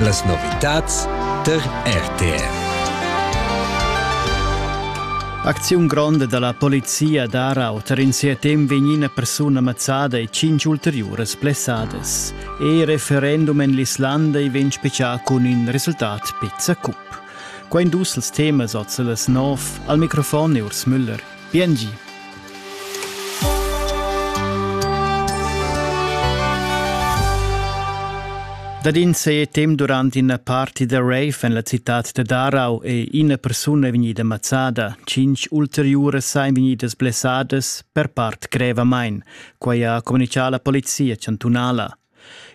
Las novitads tar RTR. Acziun gronda dalla polizia d'Arau tar in sia temp vegnina persuna mazzada e cinc ulteriuras blessadas. E referendum en l'Islanda ei vegn specià cun in resultat pizza cup. Quei dus els temas oz las nov al microfon Urs Müller. BNG. Dad in se tem durant ina party da rave en la citad da Darau è ina persuna vegnida mazzada. Cinc ulteriuras sain vegnidas blessadas per part grevamain. Quai ha communicà la polizia chantunala.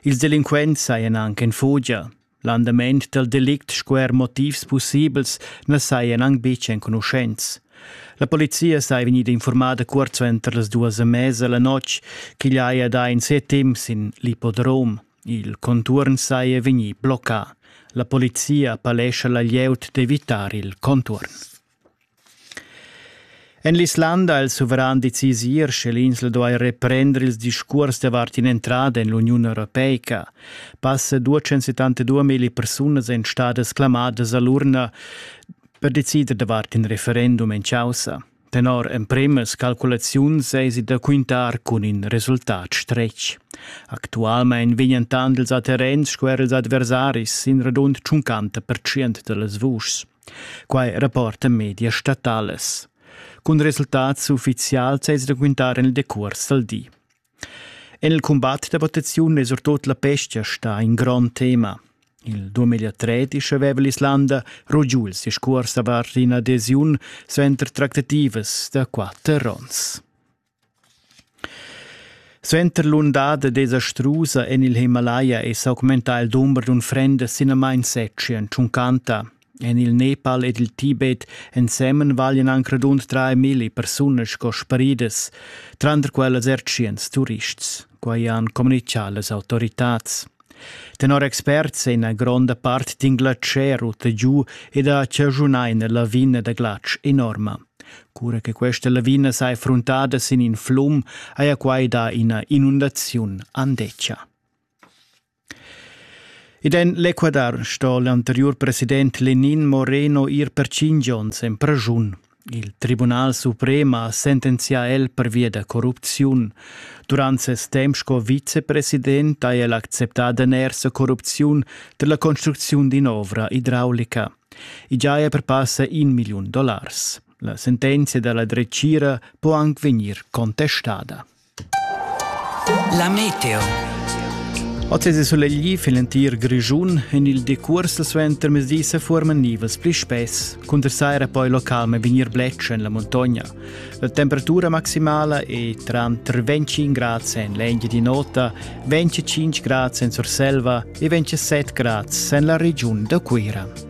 Ils delinquents sajan anche in fugia. L'andament dal delict sco er motivs pussibels na sajan anc betg enconuschents. La polizia saja vegnida informada cuort suenter las duas e mesa la notg ch'igl haja dà in set temp sin l'ippodrom. Il contuorn saja vegnì bloccà. La polizia appellescha la glieud d'evitar il contuorn. En l'Islanda ha il suveran decisier sche l'insla duai reprender ils discurs davart in'entrada en l'Uniun Europeica. Passa 272 mila persunas èn stadas clamadas a l'urna per decider davart in referendum en causa. Tenor empremas calculaziuns eisi da quintar cun in resultat stretg. Actualmein vegnan tant ils atterrens sco er ils adversaris sin radund 50% da las vuschs. Quai rapportan medias statalas. Cun resultats uffizials es da quintar en il decuors dal di. En il cumbat da votaziun è surtut la pesca sta in grond tema. Il 2013 aveva l'Islanda rugiul si scuors davart ina adesiun suenter tractativas da quatter ons. Suenter l'undada desastrusa en il Himalaia è s'augmentà il dumber d'unfrendas sinamain setg en tschuncanta. En il Nepal ed il Tibet ensemen valian anc radund milli persunas sco sparidas, tranter quellas er tschients turists. Quai han communitgà las autoritads. Tenor experts è ina gronda part d'in glatscher rutta giu ed ha chaschunà ina lavina da glatsch enorma. Cura che questa lavina sa è fruntada sin in flum, haja quai dà ina inundaziun andetgia. Ed en l'Ecuador sto l'anteriur president Lenin Moreno ir per cinc onns en praschun. Il Tribunal suprem ha sentenzià el pervia da corrupziun. Durant ses temp sco vicepresident ha el acceptà danersa corrupziun per la construcziun d'in'ovra idraulica. I giaja per passa in million dollars. La sentenzia da la dretgira può anche vegnir contestada. La meteo. Oz è sulegli fin l'entir Grischun. En il decurs suenter mezdi se forman nivels pli spess. Cunter saira poi local me vegnir bletsch en la montagna. La temperatura maximala è tra 25 gradi en l'engia di nota, 25 gradi en Surselva e 27 gradi en la regiun da Cuira.